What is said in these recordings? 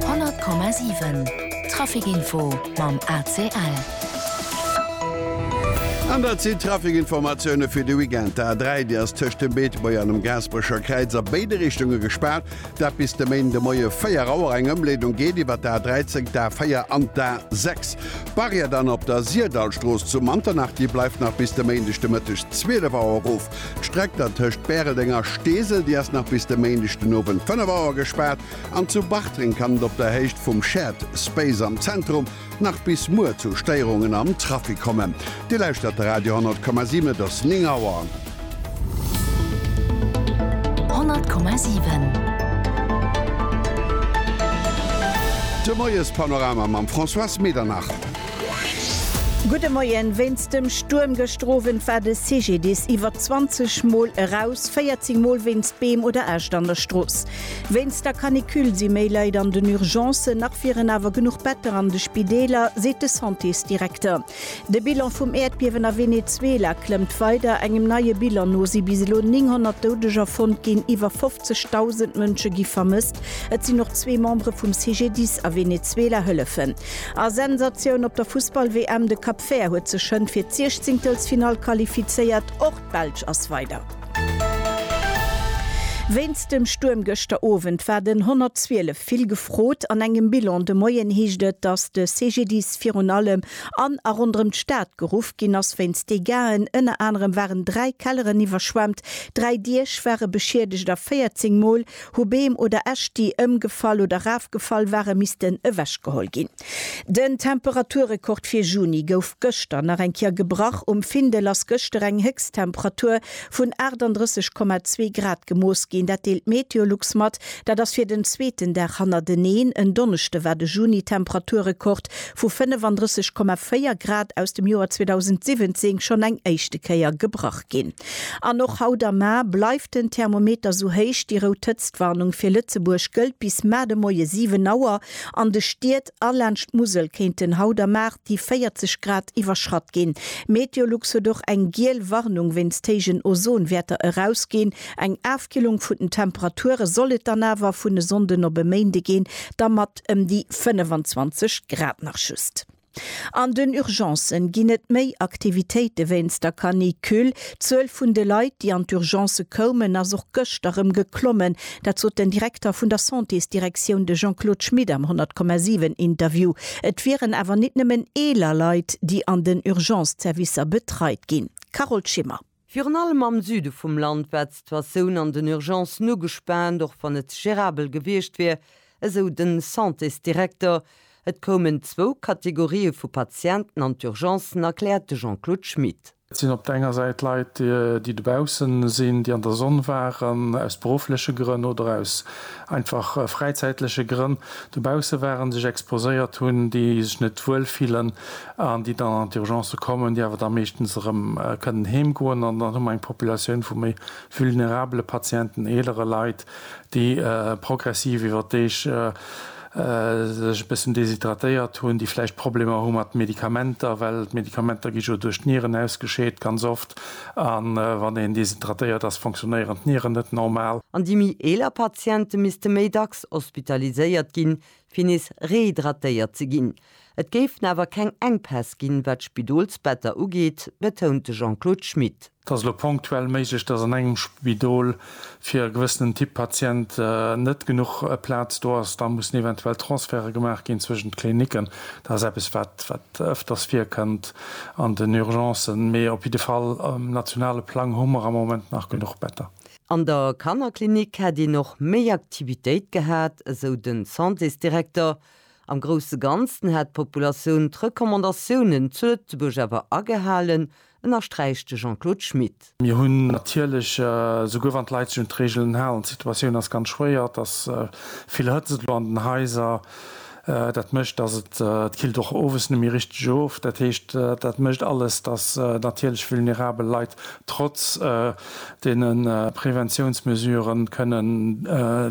100,7 Traficinfo mam ACL. An dat sinn d'Traficinformatioune fir de Weekend. D'A3, déi ass tëscht dem Beetebuerg an dem Gaasperecher Kräiz a béide Richtunge gespaart. Dat bis de Méindemoie 4 Auer. Eng Ëmleedung geet iwwer d'A13, d'A4 an d'A6. D'Barrière dann op der Sirdallstrooss zu Manternach, déi bleift nach bis de Méindeg de Mëtteg 12 Auer erof. D'Streck der tëscht Bäreldeng a Steesel, déi ass nach bis de Méindeg den Owend 5 Auer gespaart an zu Bartreng kann et op der Héicht vum Shared Space am Zentrum nach bis muer zu Stéierungen am Trafic kommen. Dir lauschtert de Radio 10,7, et ass 9 Auer. 10,7. De Moiespanorama mam Françoise Medernach. Gudde Moien. Wéinst dem Stuerm gëschter Owend war de CGDIS iwwer 20 Mol eraus, 14 Mol wéinst Beem oder Äscht an der Strooss. Wéinst der Canicule si méi Leit an den Urgencen, nach wieren awer genuch Better an de Spideeler, seet de Santésdirekter. De Bilan vum Äerdbiewen a Venezuela klëmmt weider. Engem neie Bilan no si bis elo 900 Doudeger fonnt ginn, iwwer 50.000 Mënsche gi vermësst. Et sinn och zwee Membere vum CGDIS a Venezuela hëllefen. A Sensatioun op der Fussball-WM, de Cap Vert huet sech schënn fir d'Siechzingtelsfinall qualifizéiert, och d'Belsch ass weider. Wéinst dem Stuerm gëschter Owend war den 112 vill gefrot. An engem Bilan de Moien heescht et, datt de CGDIS virun allem an a ronderëm d'Stad geruff ginn ass wéinst Degaen. Ënner anerem waren dräi Kelleren iwwerschwemmt, dräi Diech ware beschiedegt a 14 Mol Hu Beem oder Äscht, déi ëmgefall oder erafgefall waren, missten ewechgeholl ginn. Den Temperaturrekord fir Juni gouf gëschter nach eng Kéier gebrach. Um Findel ass gëschter eng Héchsttemperatur vun 38,2 Grad gemooss ginn. Dat deelt Meteolux mat. Dat ass fir den zweeten Dag hannerteneen. En Donneschde war de Juni-Temperaturrekord vu 35,4 Grad aus dem Joer 2017 schonn eng éischte Kéier gebrach ginn. An och haut am Mar bleift den Thermometer sou héich, déi rout Hëtztwarnung fir Lëtzebuerg gëllt bis mar de Moie 7 Auer. An de Stied a laanscht d'Musel kéinten haut am Mar déi 40 Grad iwwerschratt ginn. Meteolux huet och eng giel Warnung wéinst héijen Ozonwäerter erausginn. Eng Afkillung vun den Temperature soll et dann awer vun e Sonnden op e Méinde ginn, da mat ëm déi 25 Grad nach just. An den Urgencen ginn et méi Aktivitéite wéinst der Canicule. D'Zuel vun de Leit, déi an d'Urgencë koumen, ass och gëschter rëm geklommen. Dat sot den Direkter vun der Santésdirektioun, de Jean-Claude Schmit am 100,7 Interview. Et wieren awer nit nëmmen eeler Leit, déi an den Urgence-Zerwisser betreit ginn. Carole Schimmer. Virun allem am Süde vum Land war d'Situatioun an den Urgencen ugespaant, och wann et gerabel gewiescht wier, esou de Santésdirekter. Et koumen zwou Kategorië vu Patienten an d'Urgencen, erkläert de Jean-Claude Schmit. Et sinn op der enger Säit Leit, déi dobaussen sinn, déi an der Sonn waren, aus beruffleche Grënn oder aus einfach fräizäitleche Grënn dobausse waren, sech exposéiert hunn, déi sech net wuel fillen. an déi dann an d'Urgencë kommen, déi awer da meeschtens erëm kënnen heem goen, an dann hu mer eng Populatioun vu méi vulnerabele Patienten, eelere Leit, déi progressiv iwwer d'Deeg sech e bëssen deshydratéiert hunn, déi vläicht Problemer hu mat Medikamenter, well d'Medikamenter gi jo duerch d'Nieren ausgescheet ganz oft, a wann een deshydratéiert ass, fonctionnéieren d'Nieren net normal. An déi méi eeler Patiente misste méi dacks hospitaliséiert ginn, fir nees rehydratéiert ze ginn. Et géifen awer keng Enkpäss ginn, wat d'Spidolsbetter ugeet, betount de Jean-Claude Schmit. Et ass elo ponktuell méiglech, datt an engem Spidol fir e gewëssenen Typ Patient net genuch Plaz do ass. Da mussen eventuell Transferte gemaach ginn zwëschen d'Klinicken. Dat ass eppes, wat ëfters virkënnt an den Urgencen. Mee op jidde Fall um nationale Plang hu mer am Moment nach genuch Better. An der Kannerklinik hätt een och méi Aktivitéit gehat, esou de Santésdirekter. Am grousse Ganzen hätt d'Populatioun d'Recommandatiounen zu Lëtzebuerg awer agehalen, ënnersträicht de Jean-Claude Schmit. Mir hunn natierlech, esouguer wann d'Leit sech un d'Reegelen halen, d'Situatioun ass ganz schwéier, dass vill Hëtzt et elo an den Haiser. Dat mécht, dass et d'Killt och owes net méi richteg of. Dat heescht, dat mécht alles, dass natierlech vulnerabel Leit trotz deene Preventiounsmesure kënnen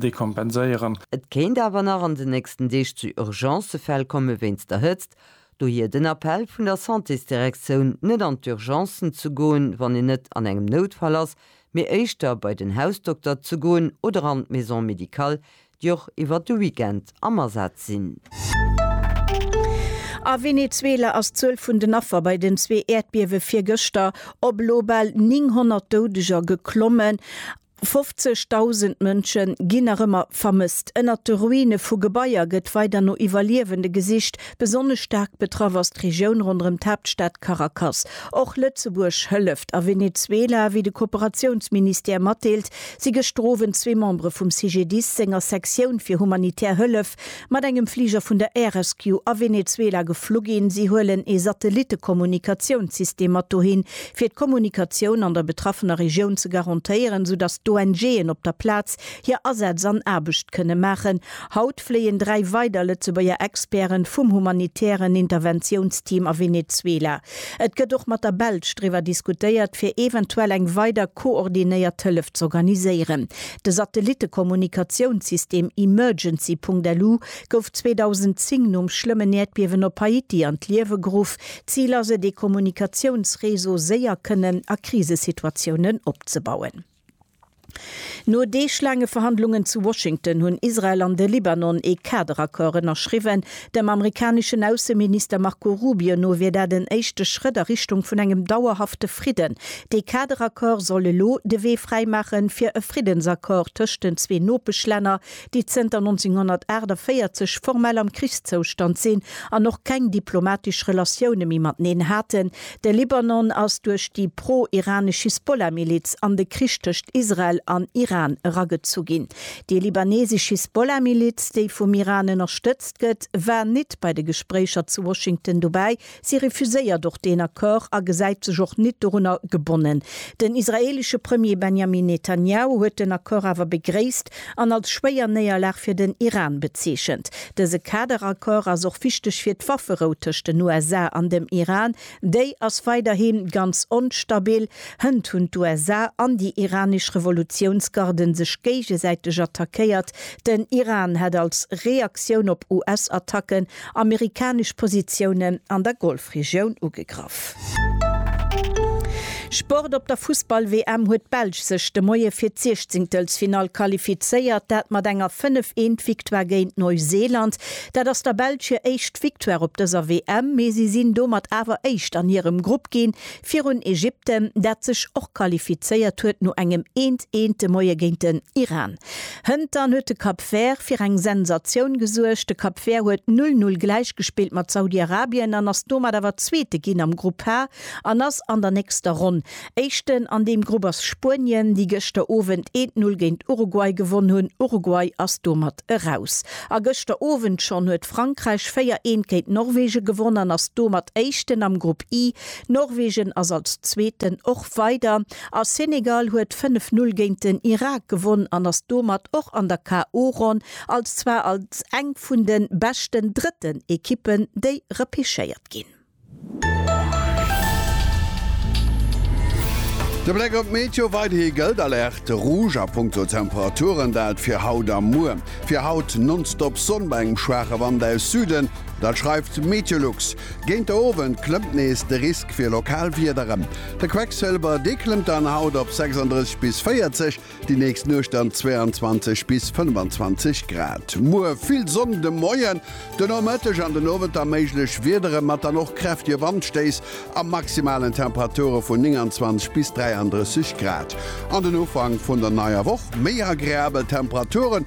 dekompenséieren. Et kéint awer nach an den nächsten Deeg zu Urgencefäll komme wéinst der Hëtzt. Dohier den Appell vun der Santésdirektioun, net an d'Urgencen ze goen, wann een net an engem Noutfall ass, mee éischter bei den Hausdokter ze goen oder an d'Maison médicale, déi och iwwert de Weekend am Asaz sinn. A Venezuela ass d'Zuel vun den Affer bei den zwee Äerdbiewe virgëschter op elo bal 900 Doudeger geklommen. 50.000 Mënsche ginn nach ëmmer vermësst. Ënnert de Ruine vu Gebaier gëtt weider no Iwwerliewende gesicht. Besonnesch staark betraff ass d'Regioun ronderëm d'Haaptstad Caracas. Och Lëtzebuerg hëlleft a Venezuela, wéi de Kooperatiounsministère matdeelt. Si gestrowen zwee Membere vum CGDIS senger Sektioun fir humanitär Hëllef, mat engem Fliger vun der Air Rescue a Venezuela geflu ginn. Si huelen ee Satellitte-Kommunikatiounssystem mat dohin, fir d'Kommunikatioun an der betraffener Regioun ze garantéieren, sou datt d'ONG'en op der Plaz hir Asätz an Aarbecht kënne maachen. Haut fléien dräi weider Lëtzebuerger Experten vum humanitären Interventiounsteam a Venezuela. Et gëtt och mat der Belsch driwwer diskutéiert, fir eventuell eng weider koordinéiert Hëllef z'organiséieren. De Satellittekommunikatiounssystem Emergency.lu gouf 2010 nom schlëmmen Äerdbiewen op Haiti an d'Liewe geruff. D'Zil ass et, ee Kommunikatiounsreseau séier kënnen a Krisesituatiounen opzebauen. No deeglaange Verhandlungen zu Washington hunn Israel an de Libanon ee Kaderaccord ënnerschriwwen. Dem amerikaneschen Ausseminister Marco Rubio no wier dat en éischte Schrëtt a Richtung vun engem dauerhafte Fridden. Dee Kaderaccord soll elo de Wee fräimaachen, fir e Friddensaccord tëscht den zwee Nopeschlänner, déi zënter 1948 formell am Krichszoustand sinn an och keng diplomatesch Relatioune méi mateneen haten. De Libanon ass duerch déi pro-iranesch Hisbollah-Miliz an de Krich tëscht Israel an Iran eragezu ginn. Déi libanesesch Hisbollah-Miliz, déi vum Iran ënnerstëtzt gëtt, war nit bei de Gespréicher zu Washington dobäi, Si refuséiert och deen Accord a gesäit sech och nit dorunner gebonnen. Den israeelesche Premier Benjamin Netanjahu huet den Accord awer begréisst an als schwéier Néierlag fir den Iran bezeechent. Dëse Kaderaccord ass och wichteg fir d'Wafferou tëscht den USA an dem Iran. Déi ass weiderhi ganz onstabil. Hënt hunn d'USA an déi iranesch Revolutiounsgarde sech géigesäiteg attackéiert. Den Iran hätt als Reaktioun op US-Attacken Amerikanesch Positiounen an der Golfregioun ugegraff. Sport Op der Fussball-WM huet d'Belsch sech de Moie fir d'Siechzingtelsfinall qualifizéiert, dat mat enger 5 Eent Victoire géint Neuseeland. Dat ass der Belsch hir éischt Victoire op dëser WM, mee si sinn domat awer éischt an hirem Grupp ginn, Virun Ägypten, dat sech och qualifizéiert huet no engem eent eent de Moie géint den Iran. Hëntern huet de Cap Vert fir eng Sensatioun gesuergt. De Cap Vert huet null null gläichgespillt mat Saudi-Arabien an ass domat awer Zweete ginn am Grupp H an ass an der nächster Ronn Éischten. An deem Grupp ass Spuenien, déi gëschter Owend eent null géint Uruguay gewonn hunn. Uruguay ass domat eraus. A gëschter Owend schonn huet Frankräich véier eent géint Norwegen gewonn an ass domat Éischten am Grupp I. Norwegen ass als Zweeten och weider a Senegal huet 5, 0 géint den Irak gewonn an ass domat och an der KO-Ronn als zwar als eng vun de beschten drëtten Ekippen, déi repechéiert ginn. De Bléck op d'Meteo, Weiderhi gëllt Alerte Rouge a Punkto Temperaturen, dat fir haut a muer. Fir haut nonstop Sonn bei engem schwaache Wand aus Süden, dat schreift Meteolux. Géint de Owend klëmmt nees de Risk fir lokal Wieder erëm. De Quecksëlwer, dee klëmmt dann haut op 36 bis 40, déi nächst Nuecht dann 22 bis 25 Grad. Muer vill Sonn de Moien, de Nomëtteg an den Owend da méiglech Wieder erëm, mat dann och kräftige Wandstéiss a maximalen Temperature vun 29 bis 33 Grad. An den Ufank vun der neier Woch, méi agreabel Temperaturen.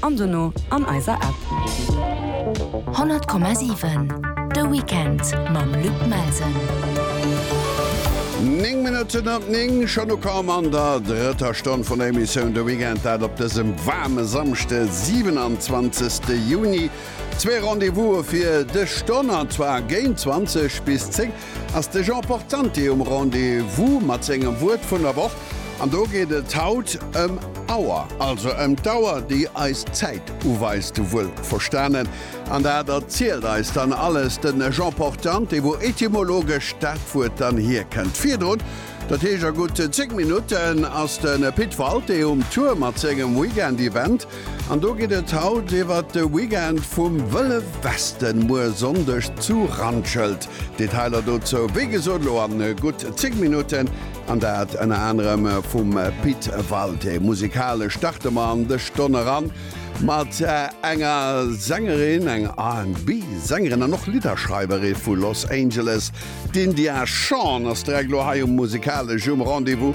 an dono an eiser App. 100,7 De Weekend mam Luc Melsen. Néng Minutten op néng, schonn ukomm an der drëtter Stonn vun der Emissioun De Weekend, dat op dësem waarme Samschde 27. Juni. Zwee Rendez-vouse fir dës Stonn, an zwar géint 20 bis 10. ass de Jean Portante um Rendez-vous mat sengem Wuert vun der Woch. An do geet et haut ëm Auer, also ëm d'Auer, déi eis d'Zäit uweist, wuel verstanen. An dat erzielt eis dann alles de Jean Portante, wou etymologesch dat Wuert dann hierkënnt. Virdrun, dat heescht a gutt 10 Minutten, ass de Pit Walté um Tour mat sengem Weekend-Event. An do geet et haut iwwert de Weekend vum Wëlle Westen, muer Sonndeg zu Randschelt. Detailer dozou, wéi gesot, elo an gutt 10 Minutten, an dat ënner anerem vum Pit Walté. Musikalesch starte mer an dës Stonn eran mat enger Sängerin, eng RB Sängerin an och Lidderschreiwere vu Los Angeles. D'India Shawn ass direkt elo hei um Musikalesch um Rendez-vous.